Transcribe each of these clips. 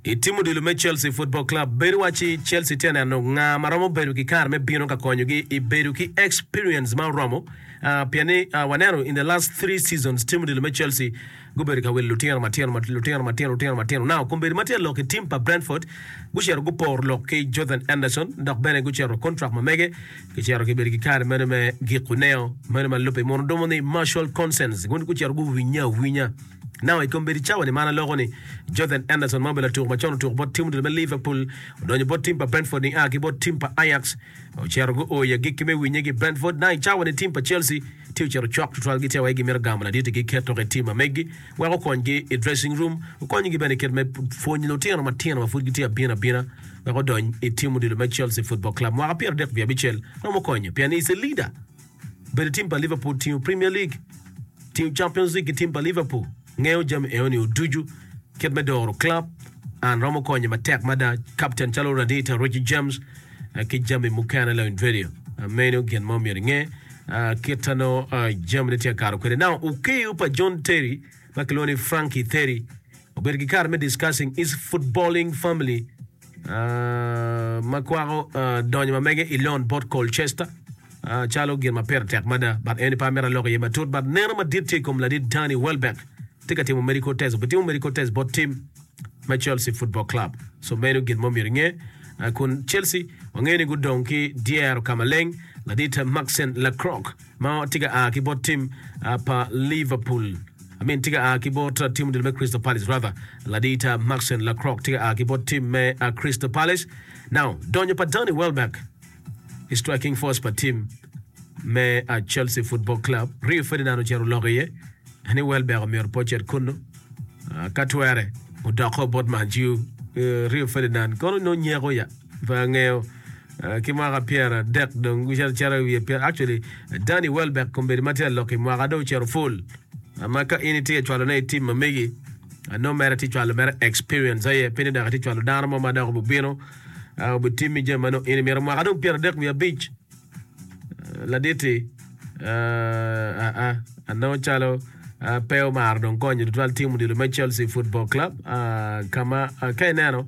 I tim odilo me Chelsea Football Club, bed iwacci Chelsea tye ka neno nga ma romo bedo ki kare me bino ka konyogi i bedo ki experience ma oromo, pien ni waneno in the last three seasons tim odilo me Chelsea gubedo ka wilo lutino matino matino lutino matino lutino matino. Now kombeddi ma tye lok i tim pa Brentford gucito guporo lok ki Jordan Anderson dok bene gucito contract ma mege gicito gibedo ki kare meno me giko neo meno ma lubbe mono dumo ni Marshall Consens gun gucito guwinye awinya. Now, i kombeddi cawa-ni ma an aloko ni, Jothan Anderson ma obedo latuk macon otuko bot tim odilo me Liverpool, odonyo bot tim pa Brentford nia ki bot tim pa Ajax, ocito guo i agikki me winye ki Brentford. Now, i cawa-ni tim pa Chelsea tye ocito cok tutwal gitye awayi gimito gamo laditi ki keto ka i tim ma megi wek okonygi i dressing room, okonygi bene i kit me pwonyo lutino matino ma pud gitye abino abina wek odony i tim odilo me Chelsea Football Club. Mwaka pyero adek wiye abicel romo konyo pien he's a leader. Bedo tim pa Liverpool tingo Premier League, tingo Champions League ki tim pa Liverpool. Ngeyo jami eno nio ducu, kit me doro club, an romo konye matek mada, captain calo Radita, Richie James, ki jami mukene la invedio. Meno gin ma omyero inge, kit ta no jami ne tye kato kwede. Now, ukiyo pa John Terry, ma kilwongo ni Frankie Terry, obedo ki kare me discussing his footballing family, ma kwako donyo ma mege i lon bot Colchester calo gin ma pire tek mada but eni pe amito alok iye matut but neno madit tye i kom ladit Danny Welbeck tye ka timo medical test obitimo medical test bot tim me Chelsea Football Club so meno gin mo myero inge kun Chelsea wangeyo ni gudong ki dyero ka maleng ladit Maxen Lacroix ma tye ka a ki bot tim pa Liverpool I mean tye ka a ki bot tim odilo me Crystal Palace rather ladita Maxen Lacrock tye ka a ki bot tim me Crystal Palace now donyo pa Danny Welbeck i striking force pa tim me Chelsea Football Club Rio Ferdinand ocito oloko iye ni Welbeck omyero pe ocit kunnu ka twere odoko bot Man U Rio Ferdinand kono nongo nyeko ya Pe angeyo. Ki mwaka pyera dek dong gucito acita i wiye pyera. Actually, Danny Welbeck kombedi ma tye alok i mwaka dong ocito full. Ma ka in itye ka cwalo ne i tim ma megi, ano mere tye cwalo mere experience aye, pe ni dok itye cwalo dano mo ma dok obibino ah, obitimmi jami ma nongo in imito. Mwaka dong pyera dek wiye abic ah, laditi ah, ah, ah, ano calo ah, pe omaro dong konyo tutwal tim odilo me Chelsea Football Club ah, ka ma ah, ka ineno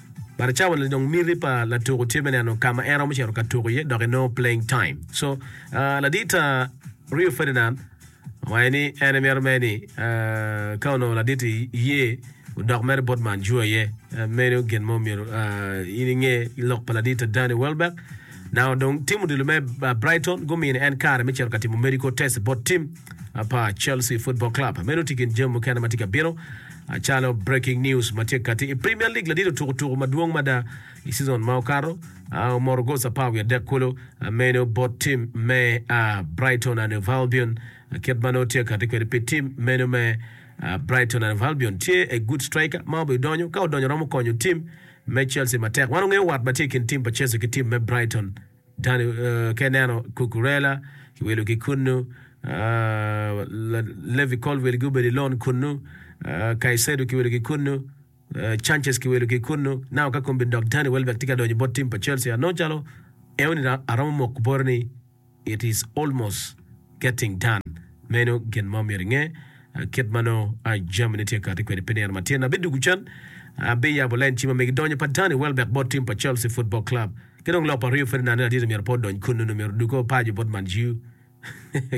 But cawa ni dong miti pa latuku tye me neno ka ma en romo cito ka tuku iye dok enongo playing time. So, ladit ta Rio Ferdinand owaco ni en emito mere ni ka onongo ladit iye odok mere bot man jua iye. Meno gin mo myero in inge lok pa ladit ta Danny Welbeck. Now dong tim odilo me Brighton gumini en kare me cito ka timo medical test bot tim pa Chelsea Football Club. Meno tye kin jami mukene ma tye ka bino. Acalo breaking news ma tye kati i Premier League ladit otuko tuku madwong mada i season ma okato, omoto gol apar wiye adek kulu meno bot team me Brighton and Hove Albion. Kit ma nongo tye kati kwede pi team meno me Brighton and Hove Albion tye a good striker ma obi donyo ka odonyo romo konyo team me Chelsea matek. Wan ongeyo wat ma tye i kin team pa Chelsea ki team me Brighton Tony ka ineno Cucurella kiwilo ki kunnu, Levi Colwill gubedo i lon kunnu, Caicedo kiwilo ki kunnu, Sanchez kiwilo ki kunnu. Now ka kombeddi dok Danny Welbeck tye ka donyo bot tim pa Chelsea, anongo calo eoni aromo moko boti ni it is almost. Getting Done. Meno gin ma omyero inge, Kit ma nongo jami ne tye ka kati kwede pi nino matin, abidwogo can, abiyabo lain cim ma mege. Donyo pa Danny Welbeck bot tim pa Chelsea Football Club ki dong lok pa Rio Ferdinand en aditi myero pe odony kunnu, nyo myero oduge o paco bot Man U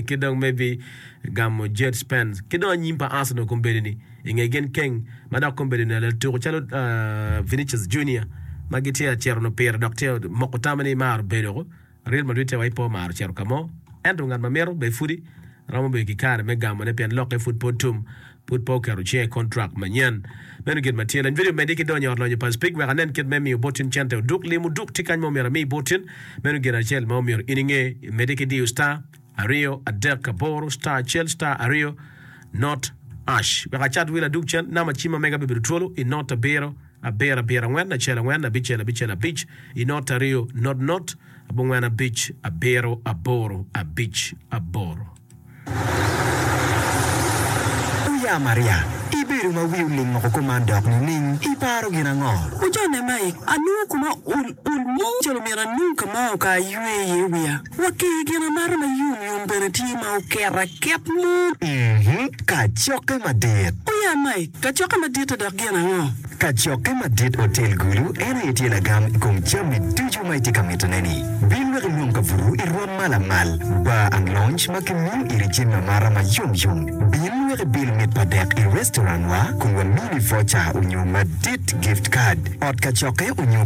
ki dong maybe gamo Jed Spence. Ki dong anyim pa Arsenal kombeddi ni inge gin keng ma dok kombeddi ni latuko calo Vinicius Junior ma gitye acito nyo pire dok tye omoko tame ni maro bedo Real Madrid tye wa i po mar ocito ka mo, ento ngat ma mito bene pudi romo bedo ki kare me gamone pien lokke pud pe otum, pud pe oketo cinge i kontrak manyen. Meno gin ma tye. Lany vidio medde ki donyo i Ot Lonyo pa Speke wek anen kit me miyo bottin cente oduk. Lim oduk tye kany ma omyero ami bottin. Meno gin acel ma omyero in inge. Imedde ki diyo star, aryo, adek, aboro, star acel, star aryo, not, ash. Wek acat wil adug cen, namba cim ma mega bibedo twolo i not abiro. Abiro, abiro, angwen, acel, angwen, abicel, abicel, abic, i not aryo, not, not, abongwen, abic, abiro, aboro, abic, aboro. Wuya Maria, ibedo ma wi oling oko kuman dok nining? Iparo gin ango? Wujone mai, anongo kuma ul, ul mo calo myero anong ka ma oka aywe iye wiya. Wa ki i gin amata ma yom yom bene tye ma oket aket mo. Kacokke madit. O ya Mike, kacokke madit-ti dok gin ango? Kacokke madit otel gulu, en aye tye lagam i kom jami ducu ma itye ka mitone-ni. Bin wek ilwom kabuto i rwom ma lamal, bar and lounge ma kimiyo iri jami amata ma yom yom. Bin wek ibil mit pa dek i restaurant-wa kun wamini voucher onyo madit, gift card, ot kacokke onyo.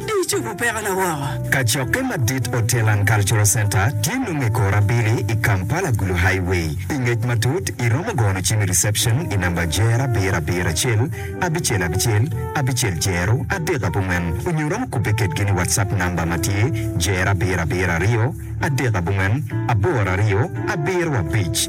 Icobo pekona woko. Kacokke madit Otelan Cultural Centre tye nongo i kor abili i Kampala Gulu Highway. Pi ngec matut, iromo gono cim i reception i namba jer abiro abiro acel abicel abicel abicel jero adek abongwen onyo iromo kubbe kedgi ni WhatsApp namba ma tye jer abiro abiro aryo adek abongwen aboro aryo abiro abic.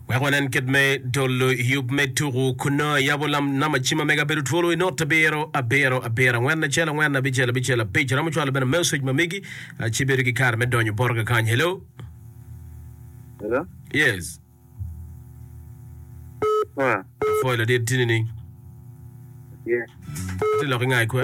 Wek wanen kit me tolo yub me tuku kunnu, ayabo nam acima me kabedo twolo i not abiro, abiro, abiro, angwen acel, angwen abicel, abicel abic. Aromo cwalo bene meucage ma migi, ci bedo ki kare me donyo boroga kany. Hello? Hello? Yes. Pua. Apwoyo ladit tini ni. Tye. Ati lok inga ikwe?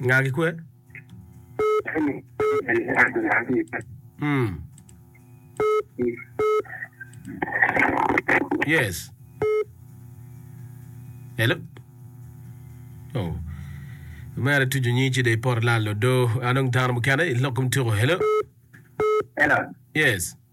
Nga ki kwe? Mm. Yes. Hello? Oh. Mere tuju nyi ci de ipor lal odo. Anong dano mukene ilok kom tuko. Hello? Hello. Yes.